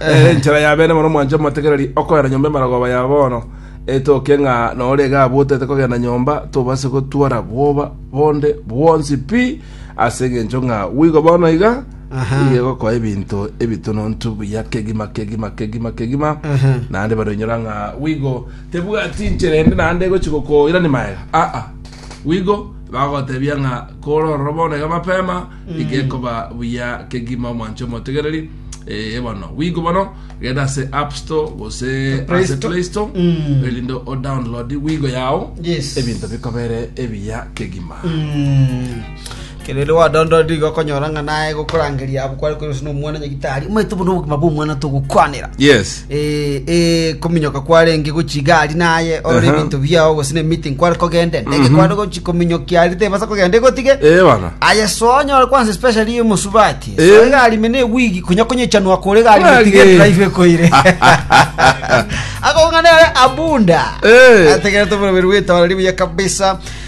Eh, enchera ya bene mono mwanche motegereri okoera nyomba emaragoba ya bono etoke ng'a nore iga abotete kogenda nyomba tobase gotwara bwoba bonde bwonsi pi ase eng'encho ng'a bwigo bono iga Aha. iga egokoa ebinto ebitonontu buya kegima kegima kegima kegima Aha. naende baroinyora ng'a bwigo tebwati nchera ende naende egochi gokoirani maega aa bwigo bagotebia ng'a kore ororo bono iga mapema Gekoba buya kegima omwanche omotegereri eh, bono wigo bono genda ase app store gose Play ase Store. play store Mm. erinde o download wigo yao Yes. ebinto bikobere ebiya kegima Mm. kerere wadondodi igo okonyora ng'a naye gokorangeria abo kware koiroswa na omwana nyagitari omanyete bono obogima bwa omwana togokwanera yes eh, eh, kominyoka kwarenge gochi igari naye orore Aha. ebinto biao gose ne meeting kware kogende ndege kware gochi kominyokia ari tebasa kogenda igotige Eh, bana. aye sonyore kwanza especially yo musubati Eh. so igari mene wigi kunya kunyechanwa kore igari Kwage. mitige drive koire akongana abunda Eh. ategera tumurubiri witawara ribuya kabisa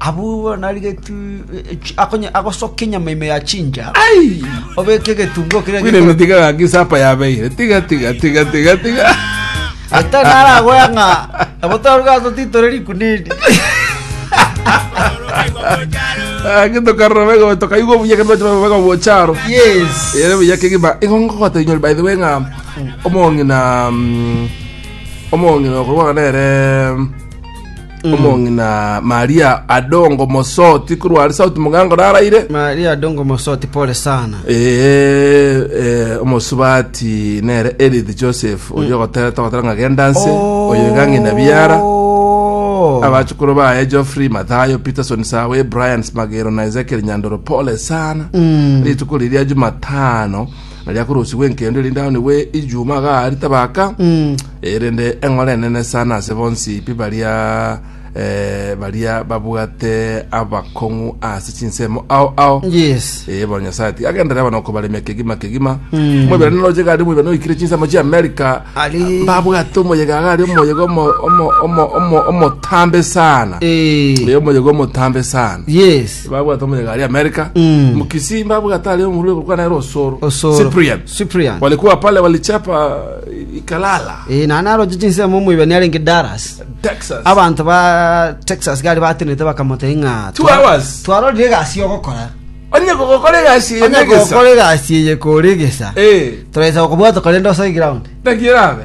Abwo narigetie agosoka enyama ime ya chinja, obeke egetunguo keria Bwire gikoro- tiga gaki sapa yabeire. Tiga tiga tiga tiga tiga. Ete naragoya ng'a nabo torugaso titore rikuna eri. Gaki tokarora bega tokaigwa buya kendo twachira bega bocharo. Yes. Ere buya kigima igongo gotenywa by the way ng'a omong'ina mm, omong'ina okorwa nere omong'ina maria adongo mosoti korwa are sauti mogango naraire Maria adongo mosoti pole sana. Eh, eh, omosubati nere Edith Joseph oyo ogotera togotera ng'a gendanse oyo igang'ina biara Oh. abachukuru baye Geoffrey Mathayo Peterson Sawe Brian Smagero na Ezekiel Nyandoro pole sana Mm. rituko riria Jumatano Nario akorosigwe enkendo erinde aonigwe ijuma agaari tabaka, erinde eng'ora enene sana ase bonsi pi baria eh, baria babwate abakong'u ase chinsemo ao ao Yes. Eh, bono nyasaye ati agendere bono kobaremia kegima kegima mwebere noroche gari mwebere noikire chinsemo chia america Ari. babwate omoyega gari omoyega omo- omo- omo- omo- omotambe sana Eh, Eh, omoyega omotambe sana yes. babwate omonyega ari amerika Mm. mkisii babwate ari omurue korwa naye rosoro Osoro. cyprian Cyprian. walikuwa pale walichapa eh, ikalala Eh, na naroche chinsemo omoibani arenge Dallas. texas Abanto ba Texas gari batenete bakamoteba ng'a Two hours. Twarorire egasi ogokora. onye gogokora egasi Onye enegesa gokora egasi eye kore egesa. Eh, Turaisa gokobwata korende osai ground. nakierabe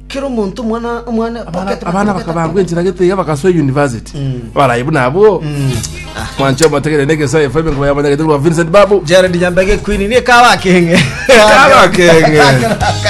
Kera omonto omwana omwana Abana pocket abana money, bakabangwa enchera gete iga bagasoa university. Abarayi buna abwo. Mwancho motegere ne gesaye FM ngo yamanya gete rwa Vincent Babu. Jared Nyambege Queen ni kawa kenge. Kawa kenge.